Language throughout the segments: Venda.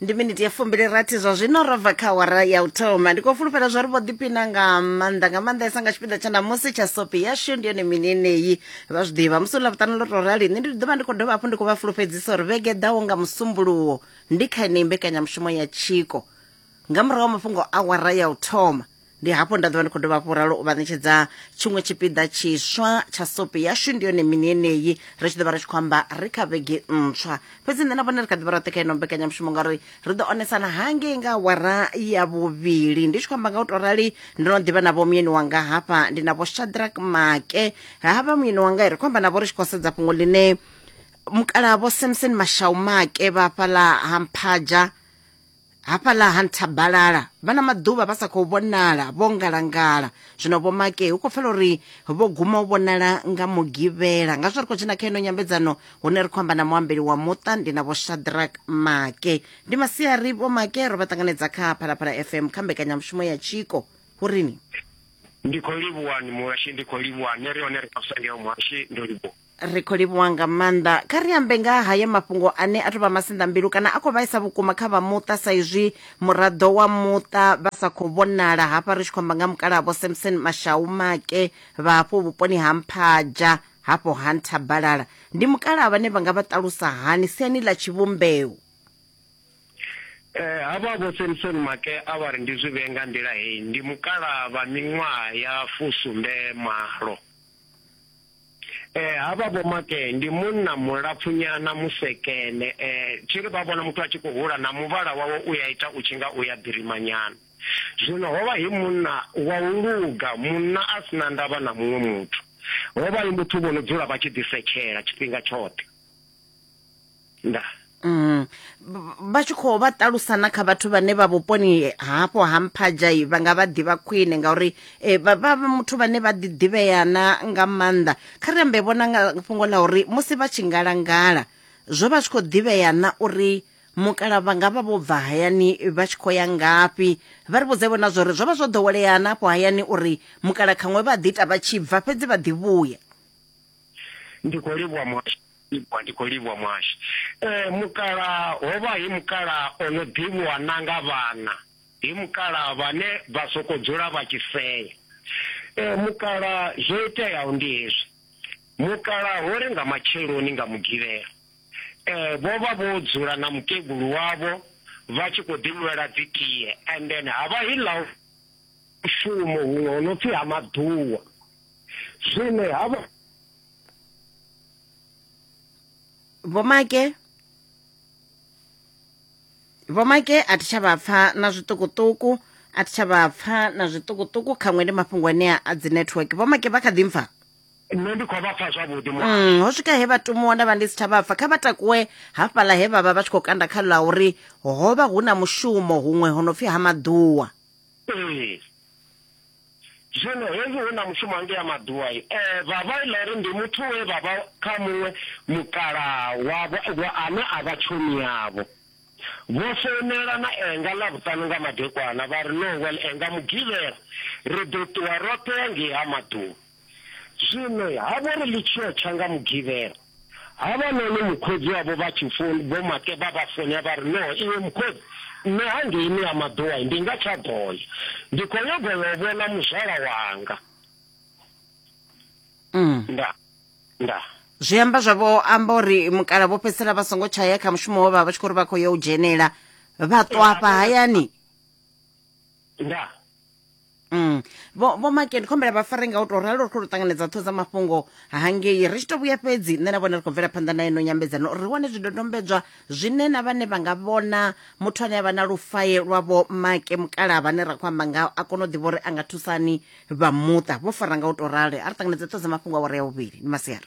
ndi miniti ya fumbili rathi zwa zwino ro bva kha wara ya u thoma ndi khou fulufhela zwa ri vho ḓipina nga maanḓa nga maanḓesa nga tshifhinga tsha namusi tsha sopi yashu ndi yone mini eneyi vha zwi ḓivha musi ḽa vhuṱanu ḽo tou rali nṋe ndi ḓo vha ndi khou dovha hafhu ndi khou vha fulufhedzisa uri vhege ḓaho nga musumbuluwo ndi kha yeneyi mbekanyamushumo ya tshiko nga murahu wa mafhungo a wara ya u thoma ndi hafho nda ḓovha ndi khou dovha hafhu ralo u vha ṋetshedza tshiṅwe tshipiḓa tshiswa tsha sope yashu ndi yone mini yeneyi ri tshi ḓo vha ri tshi khou amba ri kha vhege ntswa fhedzi nṋe na vhone ri kha ḓi vha roṱhe kha ino mbekanyamushumo ngauri ri ḓo onesana hangei nga wara ya vhuvhili ndi tshi khou amba nga u to rali ndo no ḓivha na vho muyeni wanga hafha ndi na vho shadrak make havha muyeni wanga ri khou amba na vho ri tshi khou sedza fhungo ḽine mukala vho samson mashau make vha fhaḽa ha mphaja hafhaḽa ha nthabalala vha na maḓuvha vha sa khou vhonala vho ngalangala zwino vho make hu khou pfela uri vho guma u vhonala nga mugivhela nga zwo ri khou dzhena kha ino nyambedzano hune ri khou amba na muambeli wa muṱa ndi na vho shadrak make ndi masiari vho make ro vha ṱanganedza kha phalaphala fm kha mbekanyamushumo ya tshiko hu rini ndi khou livhuwani muhashi ndi khou livhuwani ri hone ri khou sangeo muhashi ndo livhuwa ri khou livhuwa nga maanḓa kha ri ambe nga haya mafhungo ane a tou vha masinḓa mbilu kana a khou vhaisa vhukuma kha vha muṱa sa izwi muraḓo wa muṱa vha sa khou vhonala hafha ri tshi khou amba nga mukalaha vho samson mashau make vha hafho vhuponi ha mphaja hafho ha nthabalala ndi mukalaha vhane vha nga vha ṱalusa hani siani ḽa tshivhumbeo Eh, havha vho Samson Make a vha ri ndi zwi vhee nga nḓila heyi ndi mukalaha vha miṅwaha ya fusumbe malo Eh havha vho make ndi munna mulapfunyana musekene eh tshiri vha vhona muthu a tshi khou hula na muvhala wawe u ya ita u tshi nga u ya ḓirimanyana zwino hovha hi munna wa u luga munna a sina ndavha na muṅwe muthu hovha hi muthu vho no dzula vha tshi ḓisetshela tshifhinga tshoṱhe nda Mm. vha tshi khou vha ṱalusa na kha vhathu vhane vha vhuponi hafho ha mphadzhai vha nga vha ḓivha khwine ngauri eh, vha vha muthu vhane vha ḓiḓivhea na nga maanḓa kha ri ambe vhona nga fhungo ḽa uri musi vha tshi ngalangala zwo vha tshi khou ḓivhea na uri mukala vha nga vha vho bva hayani vha tshi khou ya ngafhi vha ri vhudze vhona zwori zwo vha zwo ḓowelea na afho hayani uri mukala khaṅwe vha ḓi ita vha tshi bva fhedzi vha ḓi vhuya ndi khou livhuwa muhasho Livhuwa ndi khou livhuwa muhashi. Ee mukalaha, hovha hi mukalaha o no ḓivhiwa na nga vhana, hi mukalaha vhane vha sokou dzula vha tshi sea. Ee mukalaha, zwo iteaho ndi hezwi, mukalaha ho ri nga matsheloni nga Mugivhela, ee vho vha vho dzula na mukegulu wavho vha tshi khou ḓi nwela dzi tie and then ha vha hi ḽa mushumo huṅwe ho no pfi ha maḓuwa, zwino ha vha. vho make vho make a thi tsha vha pfa na zwiṱukuṱuku a thi tsha vha pfa na zwiṱukuṱuku khaṅwe ndi mafhungo anea a dzi network vho make vha kha ḓi mpfa nṋe ndi khou vha pfa zwavhuḓi mm, ho swika he vha tumuwa nda vha ndi si tsha vha pfa kha vha takuwe hafhaḽa he vha vha vha tshi khou kanda kha ḽa uri ho vha hu na mushumo huṅwe ho no pfhi ha maḓuwa ee Zwino hezwi hu na mushumo hangea maḓuwa, e, vha vha ila uri ndi muthu we vha vha kha muṅwe mukalaha wavho wa ane a vha tshomi yavho. Vho founela na Enga Ḽavhuṱanu nga madekwana vha ri, Nowell, Enga Mugivhela, ri ḓo ṱuwa roṱhe hangei ha maḓuwa. Zwino ha vha uri ḽi tshi yo tsha nga Mugivhela, havhanoni mukhotsi wavho vha tshi foun, Vho Make vha vha founela vha ri, No, iwe mukhotsi, nṋe hangeini ha Maḓowai ndi nga tsha ḓo ya. Ndi khou nyaga u yo vhona muzwala wanga. Ndaa. Ndaa. Zwi amba zwa vho amba uri mukala vho fhedzisela vha songo tsha ya kha mushumo we vha vha tshi khou ri vha khou ya u dzhenela vha ṱwa hafha hayani. nda Mm. Vho vho Make ndi khombela vha fare nga u to ralo ri khou ṱanganedza ṱho dza mafhungo hangei ri tshi to vhuya fhedzi nṋe na vhone ri khou bvela phanḓa na ino nyambedzano uri ri wane zwidodombedzwa zwine na vhane vha nga vhona muthu ane avha na lufaye lwa vho Make mukala vhane ra khou amba nga a kona u ḓivha uri a nga thusani vha muṱa vho fara nga u to rale a ri ṱanganedza ṱho dza mafhungo awara ya vhuvhili ni masiara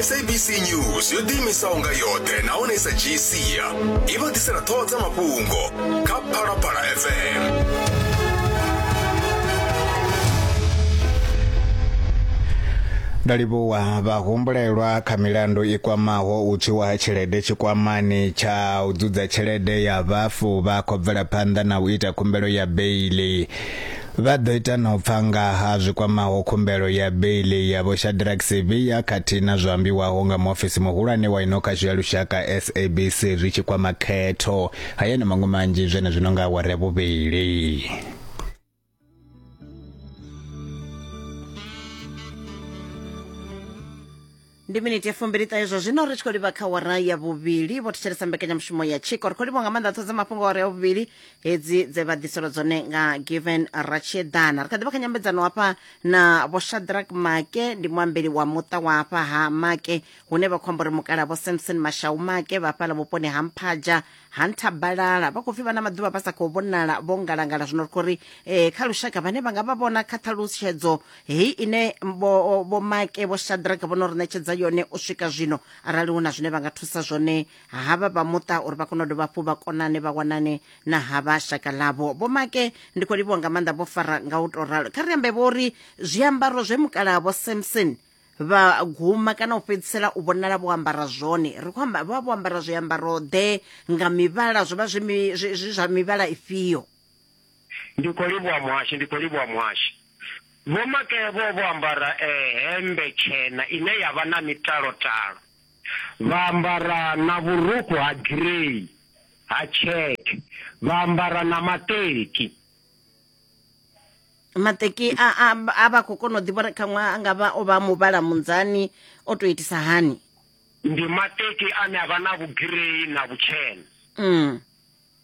sabc news yo ḓiimisaho nga yoṱhe nahone i sa dzhii sia i vha ḓisela ṱhoho dza mafhungo kha phalaphala fm ndo livhuwa vhahumbulelwa kha milandu i kwamaho u tswiwa ha tshelede tshikwamani tsha u dzudza tshelede ya vhafu vha khou bvela phanḓa na u ita khumbelo ya beili Vha ḓo ita na u pfa nga ha zwi kwamaho khumbelo ya beiḽi ya Vho Shadrack Sibiya khathihi na zwo ambiwaho nga muofisi muhulwane wa ino khasho ya lushaka SABC zwi tshi kwama khetho. Haya na maṅwe manzhi zwenezwino nga awara ya vhuvhili. ndi miniti ya fumbiliṱahe zwa zwino ri tshi khou livha kha wara ya vhuvhili vho thetshelesa mbekanyamushumo ya tshiko ri khou livha nga maanḓa ṱhodza mafhungo wara ya vhuvhili hedzi dze vha ḓiselwa dzone nga given ratshedana ri kha ḓivha kha nyambedzano hafha na vho shadrack make ndi muambeli wa muṱa wa hafha ha make hune vha khou amba uri mukala vho samson mashau make vha fhala vhuponi ha mphaja ha nthabalala vha khou pfi vha na maḓuvha vha sa khou vhonala vho ngalangala zwino ri khou ri um kha lushaka vhane vha nga vha vhona kha ṱhalutshedzo heyi ine vho make vho shadraka vho no ri ṋetshedza yone u swika zwino arali hu na zwine vha nga thusa zwone havha vha muṱa uri vha kone u dovha hafhu vha konane vha wanane na havha shaka ḽavho vho make ndi khou livhiwa nga maanḓa vho fara nga u tou ralo kha ri ambe vho ri zwiambaro zwe mukalaha vho samson vha guma kana u fhedzisela u vhonala vho ambara zwone ri khou amba vha vho ambara zwiambaro ḓe nga mivhala zwo vha zwi zwa mivhala ifhio ndi khou livhuwa muhashi ndi khou livhuwa muhashi vho makee vho vho ambara eh, hembe tshena ine ya vha na mitalotalo vha ambara na vhurukhu ha girei ha tsheke vha ambara na maṱeki mateki a, a, a vha khou kona u ḓivha uri khaṅwe a nga vha o vha muvhala munzani o tou itisa hani ndi mateki ane a vha na vhugirei na vhutshena mm.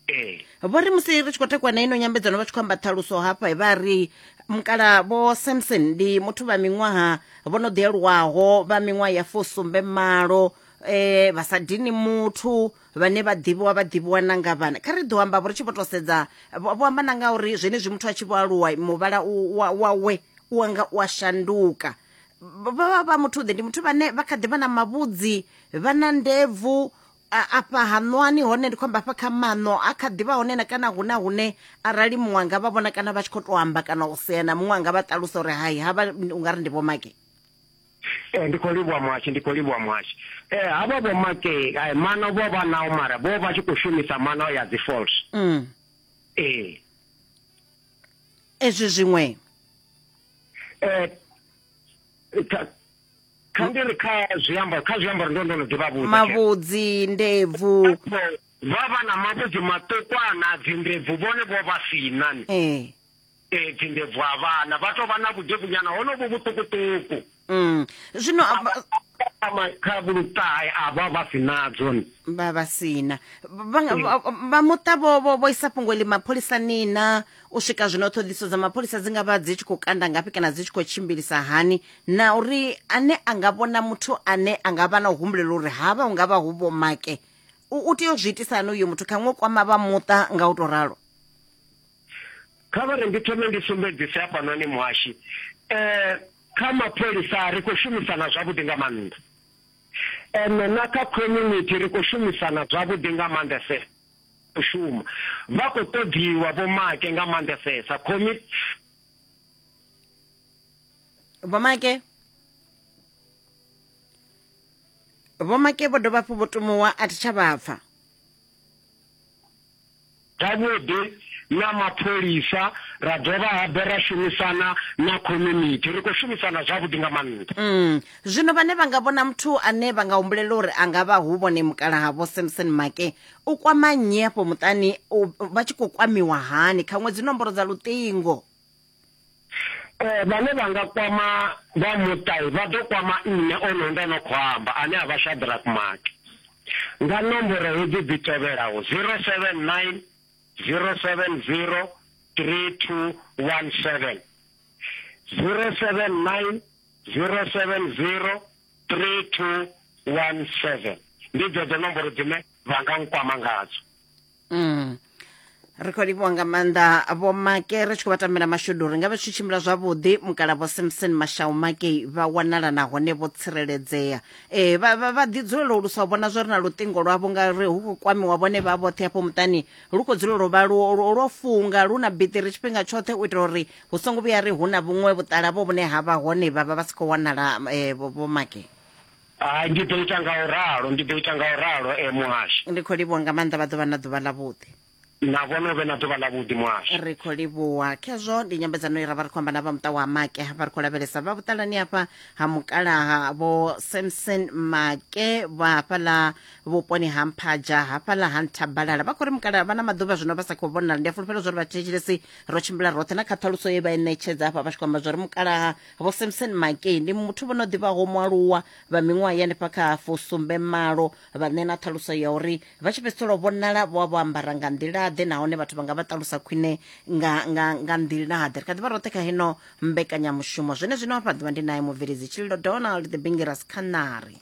ee vho ri musi ri tshi khou takuwa na ino nyambedzano vha tshi khou amba ṱhaluso hafha vha ri mukala vho samson ndi muthu vha miṅwaha vho no ḓialuwaho vha miṅwaha ya fusumbe malo eh vha sa dini muthu vhane vha ḓivhiwa vha ḓivhiwa na nga vhana kha ri ḓo amba vho ri tshi vho to sedza vho amba na nga uri zwenezwi muthu a tshi vho aluwa muvhala wawe u anga u a shanduka vha vha muthu ḓe ndi muthu vhane vha kha ḓi vha na mavhudzi vha na ndebvu afha haṋwani hone ndi khou amba afha kha maṋo a kha ḓivha hone na kana hune hune arali muṅwe anga vha vhona kana vha tshi khou to amba kana u sea na muṅwe anga vha ṱalusa uri hai havha u nga ri ndi vhomake Ee, ndi khou livhuwa Muhashi, ndi khou livhuwa Muhashi. Ee, havho vho Makey, eh, mano vho vha nao mara vho vha tshi khou shumisa mano ya dzi false. Mm. Ee. Ezwi zwiṅwe. Eh, kha- kha ndi ri kha zwiambaro, kha zwiambaro ndo ndo no ḓi vha vhudza. Mavhudzi, ndebvu. Vha vha na mavhudzi maṱukwana, dzi ndebvu vhone vho vha si na ni. Ee. Ee, dzindebvu a vhana vha tou vha na vhudebvunyana honovhu vhuṱukuṱuku Mm. zwino a- vha- Ama kha vhuluṱahe a vha vha si nadzo ni vha vha sina vha nga- vha- vha muṱa vho vho vho isa fhungo ḽi mapholisani na u swika zwino ṱhoḓiso dza mapholisa dzi nga vha dzi tshi khou kanda ngafhi kana dzi tshi khou tshimbilisa hani na uri ane a nga vhona muthu ane a nga vha na u humbulela uri havha hu nga vha hu vho make u u tea u zwi itisa hani uyo muthu khaṅwe u kwama vha muṱa nga u tou ralo kha vha ri ndi thome ndi sumbedzise hafhanoni muhashi um kha mapholisa ri khou shumisana zwavhuḓi nga maanḓa ene na kha community ri khou shumisana zwavhuḓi nga maanḓese u shuma vha khou ṱoḓiwa vhomake nga maanḓesesa comi vhomake vhomake vho dovha hafhu vho tumuwa a thi tsha vha pfa Zwavhuḓi na mapholisa ra dovha habe ra shumisana na community ri khou shumisana zwavhuḓi nga maanḓa mm. zwino vhane vha nga vhona muthu ane vha nga humbulela uri a nga vha hu vhone mukala havho samson make u kwama nnyi afho muṱani vha tshi khou kwamiwa hani kha ṅwedzi nomboro dza luṱingo Eh, vhane vha nga kwama vha muṱai vha ḓo kwama nṋe ono ndo no khou amba ane a vha Shadrack Maki nga nomboro hedzi dzi tevhelaho 079 070 3217 079 070 3217 ndi dzedzo nomboro dzine vha nga nkwama ngadzo mm. ri khou livhuwa nga maanḓa vho make ri tshi khou vha tambela mashudu ri nga vha tshi tshimbila zwavhuḓi mukala vho samson mashau make vha wanala nahone vho tsireledzea e vha ḓi dzulela u lusa u vhona zwo ri na luṱingo lwavho ngauri hu khou kwamiwa vhone vha vhoṱhe hafho muṱani lu khou dzulela u vha lwo funga lu na biṱiri tshifhinga tshoṱhe u itela uri hu songo vhuya ri hu na vhuṅwe vhuṱala vho vhune ha vha hone vha vha vha si khou wanala vho make Hai, ndi ḓo ita nga u ralo, ndi ḓo ita nga u ralo, e Muhasho. Ndi khou livhuwa nga maanḓa vha ḓo vha na ḓuvha ḽavhuḓi. Na vhone u vhe na ḓuvha ḽavhuḓi, Muhasho. Ri khou livhuwa. Khezwo ndi nyambedzano ye ra vha ri khou amba na vha muṱa wa Make vha ri khou lavhelesa vha vhuṱalani hafha ha mukalaha vho Samson Make vha hafhaḽa vhuponi ha Mphaja hafhaḽa ha Nthabalala vha khou ri mukalaha vha na maḓuvha zwino vha sa khou vhonala ndi a fulufhela zwa uri vhathetshelesi ro tshimbila roṱhe na kha ṱhaluso ye vha i ṋetshedza hafha vha tshi khou amba zwa uri mukalaha vho samson makey ndi muthu vho no ḓivhaho mualuwa vha miṅwaha ya nifha kha fusumbe malo vha ṋe na ṱhaluso ya uri vha tshi fhedzisela u vhonala vho vha vho ambara nga nḓilaḓe nahone vhathu vha nga vha ṱalusa khwine nga, nga, nga nḓilaḓe ri kha ḓivha roṱhe kha heno mbekanyamushumo zwene zwino afha ḓuvha ndi naye mubveledzi tshililo donald the bingiras khanari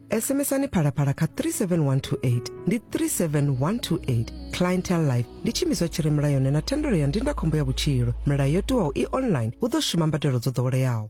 sms-ani phalaphala kha 37128 ndi 37128 clientel life ndi tshiimiswa tshi re mulayoni na thendelo ya ndindakhombo ya vhutshilo milayo yo tiwaho i online hu ḓo shuma mbadelo dzo ḓoweleaho